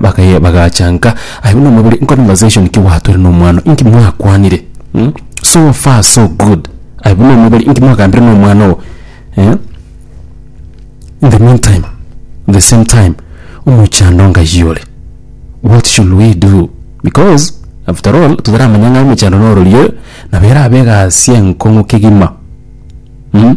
Bakaye bagacha nka aye buna omobere in conversation ki gwatwire na omwano inki mwakwanire mm? so far so good aye buna omobere inki mwagambire na omwana ogo eh? in the meantime the same time omochando ngaiyo ore what should we do because after all tutaramanya ng'a omochando nororie nabo erabe egasi enkong'u kegima mm?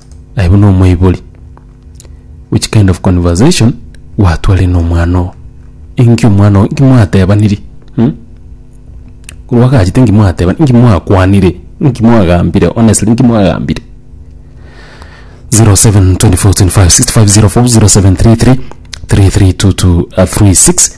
Aye buna omoibori which kind of conversation gwatware na omwana oo inki omwana oo inki mwatebaniri hmm? korwa agachete inki mwateba inki mwakwanire inki mwagambire honestly inki mwagambire 0724256504 0733 332236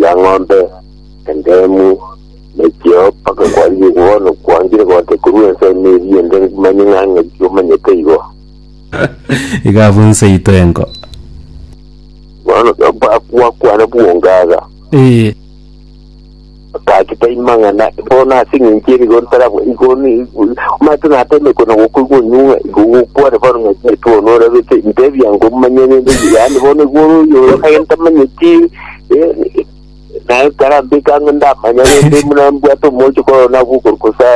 ya ng'ombe, endemu, ne chiao, mpaka kwarigie bono kwangire gocha korwa ense ime eria ende manye ng'a ng'aki omanyete igo. Iga abwo inse ito enko. Bono bakwa kwane bwongaga. Ee. Otagete imang'ana bono ase engencho erigo ntarabwa igo ni mate natemekwe na gokoigwa onyung'a igo gokware bono ng'a Yesu oo norabete ntebia ngo manya rende yaani bono igo ore oyo oyo kare ntamanyeti eh, naye karambeka ng'a ndamanya rende muna mbwate omoche koro nabwo okorukosa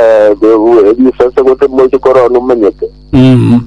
risase gose moche koro nomanyete Mm.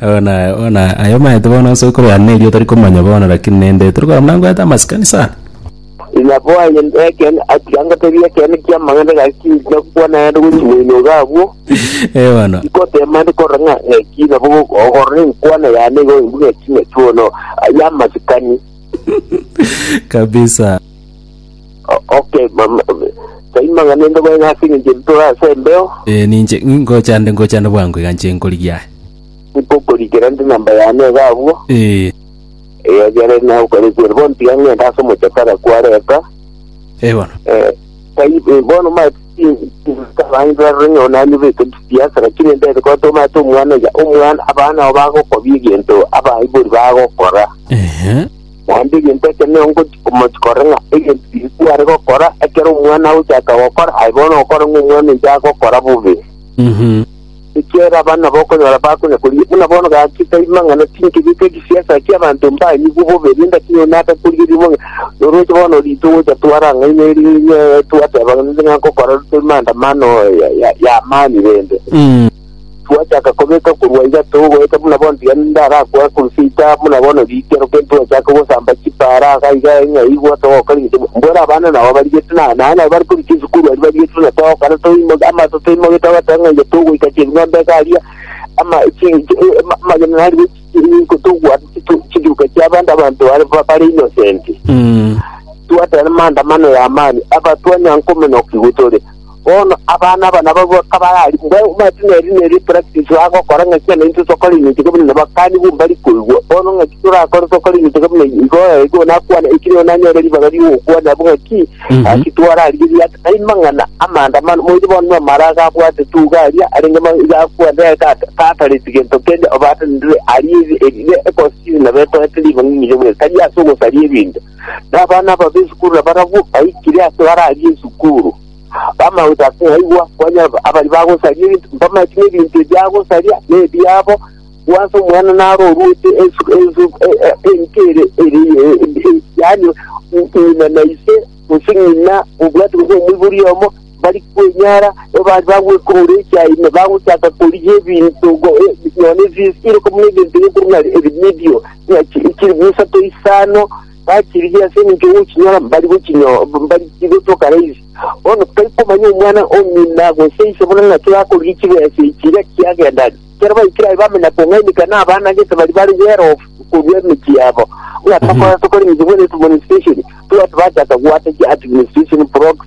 Bono aya bono aya aye omanyete bono onsi okorwana na erio otarikomanya bono rakini nende torikora buna ngoeta amasikani sana. Ina bwaye ekene atiga ngotebie ekene kiamang'ana gaki ngakwana naende gori moinoga abwo Eh bono ngotema ndi korora ng'a ng'aki nabo ogorora enkwana yane igo imbu ng'aki ng'aki bono yamasikani kabisa. Okay, mama. Saima ng'a nende bweng'a ase eng'encho ere tore ase embeo, Eh, ninche ngocha nde ngocha nde bwango iga nche nkorigia aye. nkokorikera ndi namba yane iga abwo. Eh, Eyo ekero naye okorikwa ere, bono tiga ng'ende ase omochakara kware eka. eh bono. Eh, tai- eh, bono mae tabangira rore ng'a onani bete chisiasa, lakini endete ko tomate omwana iga, omwana abana nabo bagokobia egento abaibori bagokora. Ehe. Naende egento ekio nigo ngochia komochia korora ng'a egento Yesu are gokora ekero omwana agochaka gokora, aye bono ogokora ng'a omwana oito agokora bobe. Ekiagera abana bokonyora bakonya korigia buna bono gaki taima ng'a naki nkebeke egesiasa ki'abanto mbanyigwe bobe, rende ase nigo naaka korigia rimo ng'a noroche bono rito gocha twara ang'e inwe ring'ee twateba ng'a ninde ng'akokora rute maandamano ya- ya- y'amaani rende. Twachaka kobeka korwa iga togoeta buna bonsi yaani inde arakwa Crusader buna bono rikero keri twachake gosamba chipara iga iga ng'a igwa togoka ring'iti mbwere abana nabo barigete na naye nabo bari korwa chisukuru aria barigete buna togokana toimo amato toimoge togoteba ng'a iga togoika chebing'ombe iga aria ama chi chi- eh, ama- amagena narigo togwa chiduka chiabande abanto bare bare innocent Mm. twatera maandamano ya amani abatwa nyankomenoki gotore Bono abana aba nabo kabararikwe, babe omanyete ng'a eri nerio epractice bagokora, ng'a kiana intwe tokore eminto eke buna nabakani bo mbari koigwa. Bono ng'aki torakore tokore eminto eke buna igo, ee, igo nakwane, eki nigo nanyore ribaga rigokwana abwo ng'aki, Mhm. gaki twararigeria ase amang'ana amaandamano, moire bono na amaraga abwate tuga aria, arenge ma- iga akwane eka ata- tatareti gento kende, obatanire arie ebi- ebi- ecostume na betoete ribaga ng'irobwe, tari ase ogosaria ebinto. na abana aba b'esukuru nabarabwo baikire ase bararie esukuru. Bamagocha ase yaigwa, kwanyora ba- abari bagosaria ebinto, mbamache n'ebinto ebiagosaria nebiabo, bwansa omwana naro oruete esu- esu- e- e- enka ere ere e- e- yaani ng'ina na ise, gose ng'ina obwate gose omoibori oyomo, bari kwenyara, abandi bagwekurura echai, na bagochaka korigia ebinto go- e- nonya ne zi- iroko buna ebinto bikorwa ng'a ebimidio, ng'a chi- chiri bw'esato isano, bachirigia ase eng'encho y'ogochinyora mbari gochinyo- mb- mbari chigotoka raisi. Bono tari komanya omwana o ng'ina gose ise buna ng'aki bakorigia chibesa echi iga chiagenda. Ekero baikire aye bamanya kong'ainekia n'abana gete bari bare well off korwa emechie yabo. Ng'a tokorora tokore eng'encho bwene etumonisitation, twati bachaka goata chi administration blocks,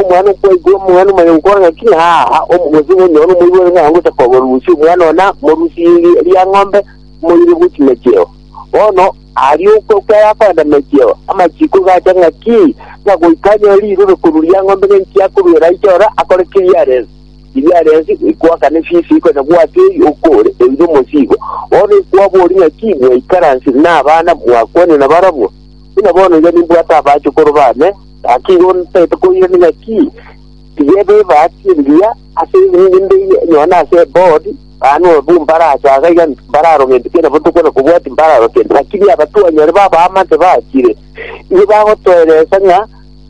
Omwana okwaigwa omwana omanya gokora ng'aki ng'aa, gose nonyore omoibori ng'a ngocha koba orusia omwana oo, na morusie ri- ria ng'ombe, moire bwe chimecheo. Bono aria okwa okwo arakorenda mecheo, amachiko gacha ng'aki, ng'a goika anyore rirube korwa ria ng'ombe ng'a inki akorwera aiche ororo akore keria arense. Eria arense ekwakana efisi eye konya gwake eyi okore eira omosigo. Bono ekwabori ng'aki, mwaikaranse na abana mwakwanire nabarabwo, buna bono iga nimbwate abachokoro bane, Gaki igo ntaete koirana ng'aki tiga ebebati engiya ase ebiminto mbeiye nonya nase eboard, baano ababua mbarache aaga iga mbararo gento kiana botuko na kobua timbararo kende. Gaki ria abatuanyare b'abaamate bachire, nigo bagotoeresa ng'a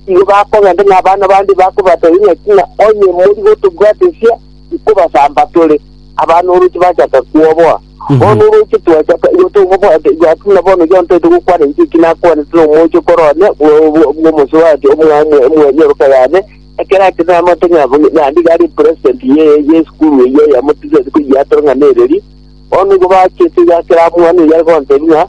igo bakogenda ng'a abana bande bakobateebia ng'aki ng'a onye mori gotobwatesia, ikobasamba tore. Abana oroche bachaka kwoboa. Bono oroche twachaka, igo tomobwate, igo ase buna bono John taete gokwana inche eki nakwanete nomoche korwa one bwo- bwo- bw'omosubaati omwamwe omwenyoroka yane, ekero ache namate ng'a bu- ng'a nigo are president ye- y'esukuru eyio eyamo tisaeti koyiatera ng'a nereri. Bono igo bachete iga ekero amwana oyio are gotebia ng'a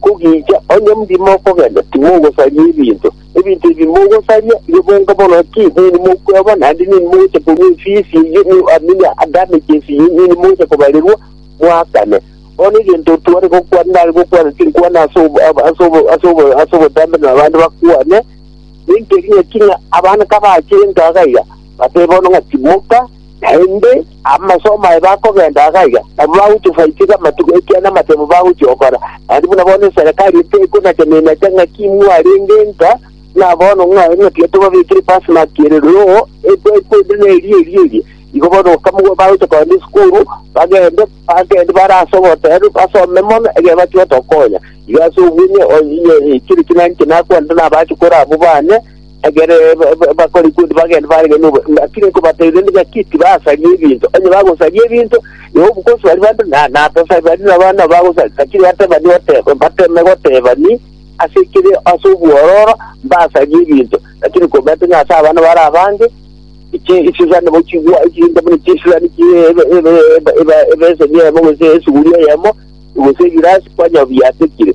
kogicha onye mbuya mokogenda timogosaria ebinto. Ebinto ebi mogosaria bibonge mono ki nini mokweba, naende nini mogocha korua efisi eyio, ni- ah, nini ah, damages eyio nini mogocha kobarerwa mwakane. Bono egento tware gokwana nare gokwana tinkwana ase obo- ab- ase obo- ase obo- ase obotambe na abande bakwane, nintebi ng'a king'a abana kabachire enka iga, batebe bono ng'a timoka, Naende amasomo aye bakogenda iga iga, nabo bagochia ofariseka amatuko, ekiagera namatemo bagochia gokora. Naende buna bono eserekari eye tekonatenenete ng'aki imwe arenge nka, buna bono ng'a ng'aki tobabekire pasi ng'aki ere roho, ekwekwe inde neria eria eria. Igo bono bakamogwa bagochia kogenda esukuru, bagende bagende bare ase oboteneneku basome mono ekero bachia gotokonya. Iga ase obwo onye onye chire chinani chinakwanete nabache kore abwo bane, Ekero bakorikwa onde bagende barenge nobobe, naki nkobatebirie inde ng'aki tibasaria ebinto. Onye bagosaria ebinto, igo omogosi baria bande na natasari baria nabana nabo bagosaria. Naki nibatebani goteba, mbateme gotebani ase ekere ase obwororo mbasarie ebinto. Naki nkobaete ng'a ase abana bare abange chi chisani bo chigwa chinde buna chisirani chi ebe ebe eba ebeseni eyemo gose esuguri eyemo, gose egirasi, kwanyora biyatekire.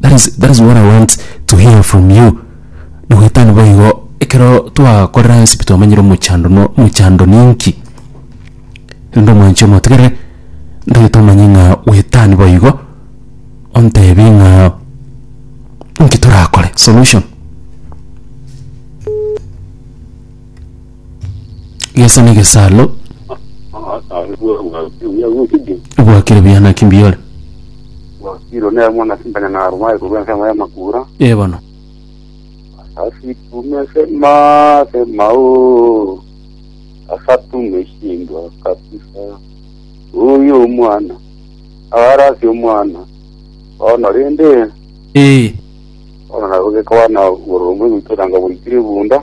That is, that is what I want to hear from you. Nogoetania boigo, ekero twakorera onsi pi twamanyire omochando no omochando ninki. Rende omwanchi omotigere, ntagete omanye ng'a goetania boigo, ontebie ng'a inki torakore, solution. Gesa negesalo bwakire buya naki mbiore. wakiro ne mwana simbanya na aruma ekorwa ensemo y'amakura Eh bono. asasitume sema sema o asatume shindwa kabisa uyu omwana arasi omwana ono rende Eh. ono nagogekwana borombe goitoranga boikire bunda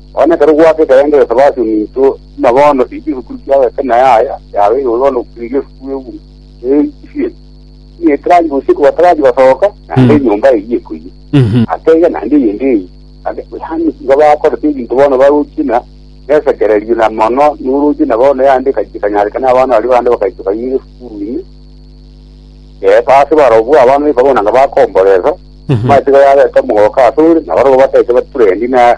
Onye ekero gwaka ekerengereso basiomitwe, tima bono rigia egesukuru kiao eke na yaya yao eyio bono rigia esukuru y'egunia eiswe, ime etaraji gose ekogwa taraji basoka, naende enyomba eyio ekoiyia. Atebe naende eyende eyio, naende yaani nigo bakorete ebinto bono barochire na nesekererio na mono noroche na bono yande ekachi ekanyareka na abana baria bande bakaitwa baiga egesukuru ime. Eh ase barobwo abana baika bono nanga bakomboresa, matiga yabete omogoka asore, nabarobwo bateche baturendi na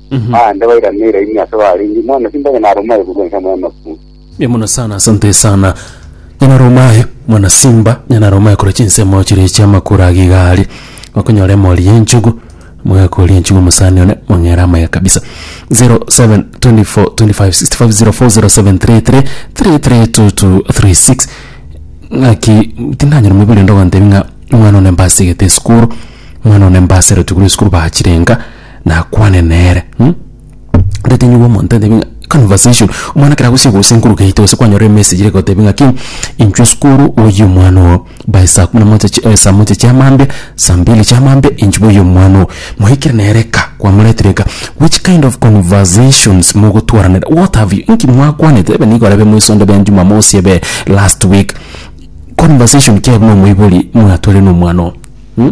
Aande bairaneire ime ase barenge, Mwana, simba onye naroma aye korwa ense mw'amafu. Mbuya mono sana, asante sana. Nyanaroma aye, mwana simba, nyanaroma aye korwa chinsemo chiria chi'amakura age iga aria. Mokonyora emori y'enchugu, mogekoria enchugu omosani one, mong'ere amaya kabisa. 07242565040733332236 ng'aki tindanyora moibere ende ogontebia ng'a omwana one mbasegete esukuru, omwana one mbaserete korwa esukuru bachirenga. nakwane nere hm ndatebia omonto ntebi ng'a conversation omwana ekero agochia gocha nkuru gaito gose kwanyora emessage ere gotebia ng'aki inchwe sukuru oyie omwana oo by saa kumi na moja chi- eh saa moja chia amaambia saa mbili chia amaambia inchwe boyie omwana oo. Mwaikire nere ka kwamoretire ka which kind of conversations mogotwarana what have you inki mwakwanete ebe nigo arebe moiso onde be jumamosi ebe last week conversation ki aye buna omoibori mwatwarire na omwana oo hm.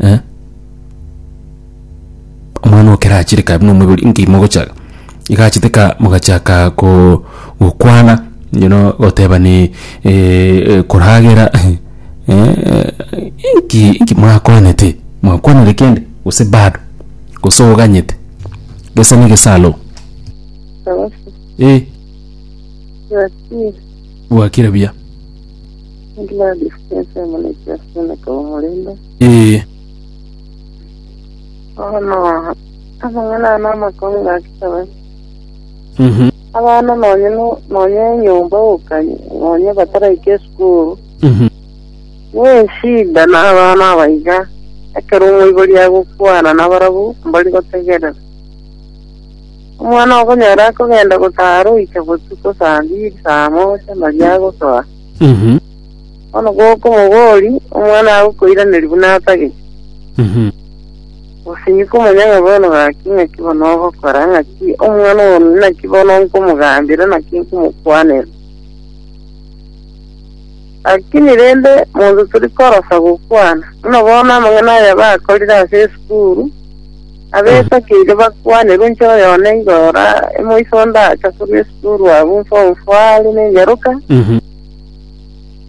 eh, omwana okere achire kaye buna omoibori inki mogocha iga achete ka mogachaka ko gokwana you know goteba ni koragera eh, inki inki mwakwanete, mwakwanire kende gose bado, gose oganyete, gesa na gesa aloo, Sawa sawa. eh, Bwakire. bwakire buya. Gladys Chesa Omoneke ase Omoneke bw'omorembe. Ee. Bono amang'ana aya namakong'u gakisabe. Mhm. Abana nonye no- nonye enyomba gokanye nonye bataraika esukuru Mhm. neshida na abana abaiga ekero omoibori agokwana nabarabu mbori gotegerera omwana okonyora akogenda gotara oike botuko saa mbiri saa moja maria agosoa Bono gokomoboria, omwana agokoiraneria buna atagete. Gose inwe komanya ng'a bono gaki ng'aki bono ogokora, ng'aki omwana oo naki bono nkomogambera, naki nkomokwanera. Lakini rende monto tori korosa gokwana, buna bono amang'ana aya bakorire ase esukuru, Abesakire bakwane ronche oyone igo ora emoiso onde acha korwa esukuru abwo mfo mfo are nengeroka Mhm.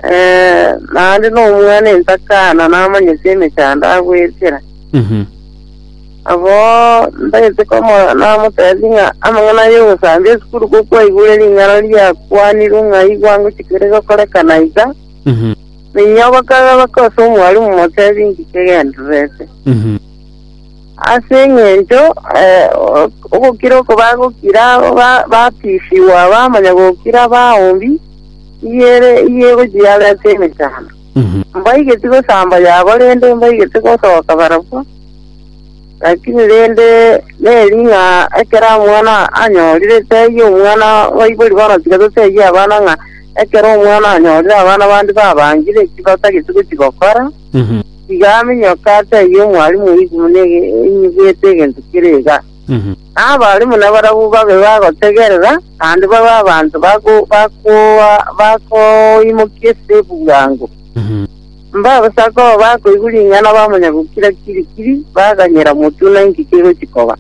eh, naende nomwana entakana namanyete emechando agwechera Mhm. abo ndagete komo namotebi ng'a amang'ana aye ogosambia esukuru gokwaigure ring'ana riakwanirwe ng'a igwa ngochikere gokorekana iga Mhm. ninyogoka gose omwalimu motebi ngike gendererete Mhm. Ase engencho ogokira oko bagokira batisibwa bamanya gokira baombi iyere iye egochia yabo ase emechando. Mbaigeti gosamba yabo rende mbaigeti gosoka barabwo, lakini rende neri ng'a ekero omwana anyorire teyie omwana baibori bono tiga totebie abana ng'a ekero omwana anyorire abana bande babangire eki batagete gochi gokora. Tiga aminyoke ase ayio omwalimu oigwe buna enyigwete egento kere iga, na abarimu nabarabwo babe bagotegerera, naende babe abanto bakoimokia esese bwango. Mbabisa koba bakoigwa ring'ana bamanya gokira kirikiri, baganyera motwe ng'a inki kegochia koba.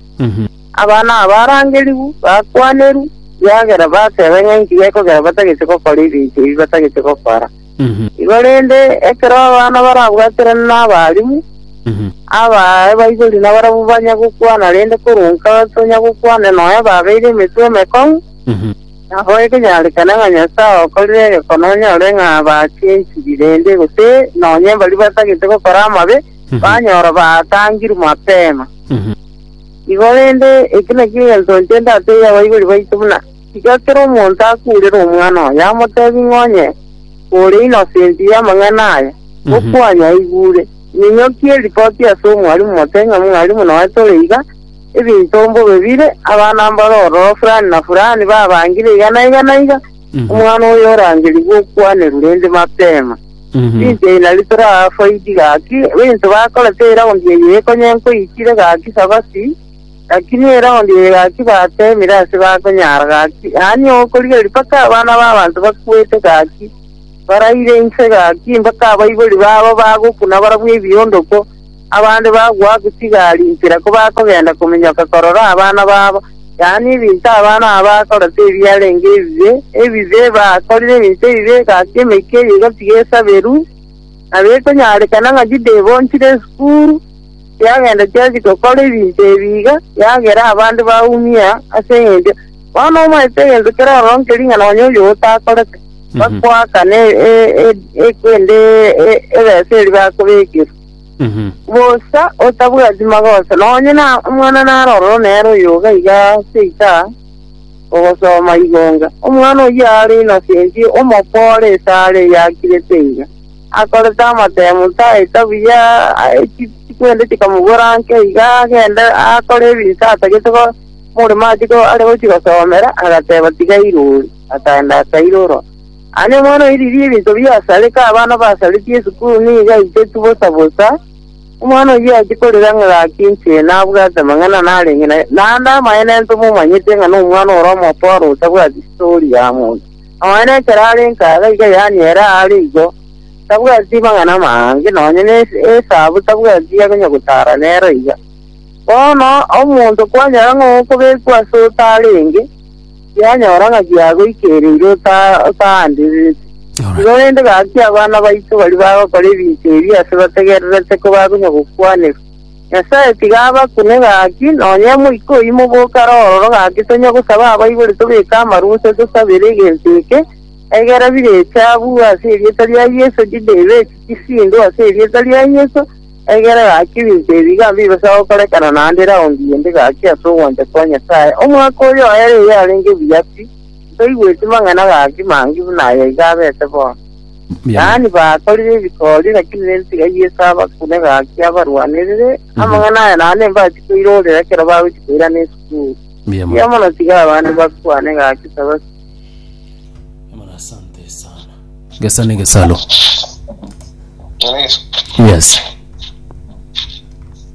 Abana aba barangerigwe, bakwanerwe, ekiagera bateba ng'a inki gekogera batagete gokora ebirecha ebi batagete gokora. Igo rende, ekero abana barabwaterane n'abarimu, abaaye baibori nabarabwo banya gokwana, rende koronka tonya gokwane nonya babeire emetwe emekong'u, nabo ekenyarekane ng'a Nyasae okorire egekono onyore ng'a bachenchiri, rende gose nonya baria batagete gokora amabe banyora baatangirwe mapema. Igo rende, eki nakio egento inche ndatebie abaibori baito buna. Tiga kera omonto akurere omwana oye amotebi ng'a onye ore inosenti y'amang'ana aya, gokwanyu aigure. Ninyokie eripoti ase omwalimu mote ng'a mwalimu noe tore iga, ebinto mbobe bire, abana mbare ororo fulani na fulani babangire iga na iga na iga, omwana oyo orangerigwe okwanerwa rende mapema. Rinchia inari torafaidi gaki, ebinto bakore teraondi eye ekonye nkoikire gaki sabati. Gaki niere onde oyo gaki bateemire ase bakonyara, gaki aanie okorigereria mpaka abana b'abanto bakuete, gaki baraire inse, gaki mpaka abaibori babo bagokuna barabwo ebiondoko, abande bagwa chigaari inchera kobakogenda kominyoka korora abana babo, yaani ebinto abana aba bakorete ebiarenge ebibe, ebibe, bakorire ebinto ebibe, gaki emeika eye egatiga esaberu, na bekonyarekana ng'a Yuda ebonchire esukuru. Chiagenda chiachia gokora ebinto ebi iga, yagera abande baumia ase engencho bono omanyete egento keroro nke ring'ana onye oyio gotakorete, bakoakana kende ebesa eria bakobekerwa. Bosa otabwati magoso, nonye na omwana nare ororo nere oyoga iga seika ogosoma igonga, omwana oyio are innocent, omokore esare eyakirete iga. akorete amatemu taeta buya, chikwende chikamogora nke iga agende akore ebinto atagete omoremo are gochia gosomera, agateba tiga irori, akagenda akairora. Aye omwana oye riria ebinto biasarete abana basaretie esukuru nigo aiteti bosa bosa, omwana oyio achia korera ng'a gaki inche nabwate amang'ana narenge naye, naende amaene ntomomanyete ng'a nomwana ore omotoro otabwati story ya monto. Omonene ekero are nkaga iga yaani ere aare igo, tabwati mang'ana amange, nonya ne esabu tabwati ya konya gotara nero iga. Bono omonto kwanyora ng'a okobekwa ase otarenge, yanyora ng'a giagoikereire ota- otaanderereti. Igo rende gaki abana baito baria bagokora ebinto ebi ase bategererete ko bakonya gokwanerwa. Nyasae tiga abakune gaki, nonya Omoika oyio moboke arororo gaki tonya gosaba abaibori tobeke amaru gose tosabere egento eke, egera bire echabu ase erieta ria Yeso chide ibe chisindu ase erieta ria Yeso, egera gaki ebinto ebi iga mbibasa gokorekana naende raundi ende gaki ase ogwancha kwa Nyasae. Omwaka oyo oere iga arenge buya pi, ntoigweti mang'ana gaki mangi buna aya iga abete bono. Yaani bakorire ebikori, lakini nensiga Yeso abakune gaki abarwanerere. Amang'ana aya naende mbachia koirorera ekero bagochia koirana esukuru. Mbuya Mbuya mono. mono tiga abande bakwane gaki saba Muna asante sana. Gesa ne gesalo. Yes.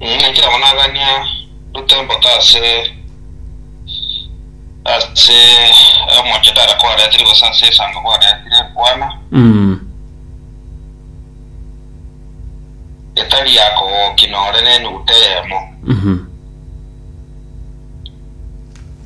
Inee! Kera monagania rute mboto ase ase omonche tara kwaretire gose ase esango kwaretire, kwana, etari yakogokia nore nenuguta eyemo.